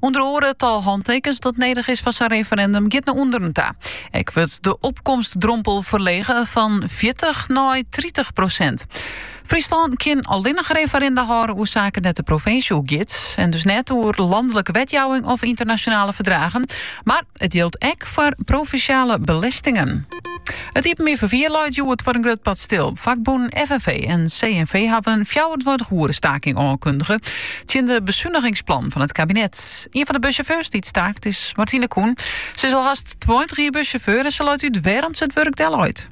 Under oare it tal hantekens dat nedich is foar sa'n referendum giet nei ûnderen ta. Ek wurdt de opkomstdrompel ferlege fan fjirtich nei tritich prosint. Fryslân kin allinnich referenda hâlde oer saken dêr't de provinsje oer giet en dus net oer lanlike wetjouwing of ynternasjonale ferdragen. Mar It jildt ek foar provinsjale belestingen. It iepenbier ferfier leit hjoed foar in grut part stil. Fakbûnen FNV en CNV hawwe in fjouwerentweintich oere staking oankundige tsjin de besunigingsplannen fan it kabinet. Ien fan de bussjauffeurs dy't staakt is Martine Koen. Se is al hast tweintich jier bussjauffeur en se leit út wêrom't se it wurk delleit.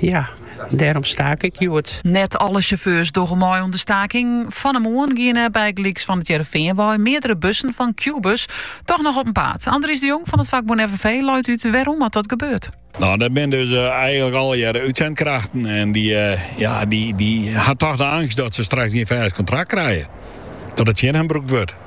Ja, dêrom staak ik hjoed. Net alle sjauffeurs dogge mei oan de staking. Fan de moarn giene bygelyks fan it Hearrenfean wei meardere bussen fan Qbuzz toch noch op 'en paad. Andries de Jong fan fakbûn FNV leit út wêrom't dat gebeurt. Nou, dat binne dus eigenlik allegearre útsendkrachten. En die, eh, ja, die, die ha toch de angst dat ze straks geen fêst kontrakt krije. Dat it tsjin hen brûkt wurdt.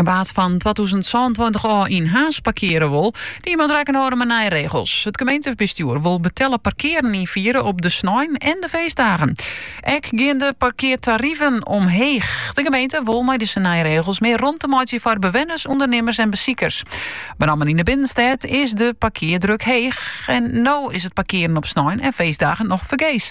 En wa't fan 2022 ôf yn Harns parkearje wol, die moat rekken hâlde mei nije regels. It gemeentebestjoer wol betelle parkearen ynfiere op de snein en de feestdagen. Ek gean de parkeartariven omheech. De gemeente wol mei dizze nije regels mear romte meitsje foar bewenners, ûndernimmers en besikers. Benammen yn de binnenstêd is de parkeardruk heech en no is it parkearen op snein en feestdagen noch fergees.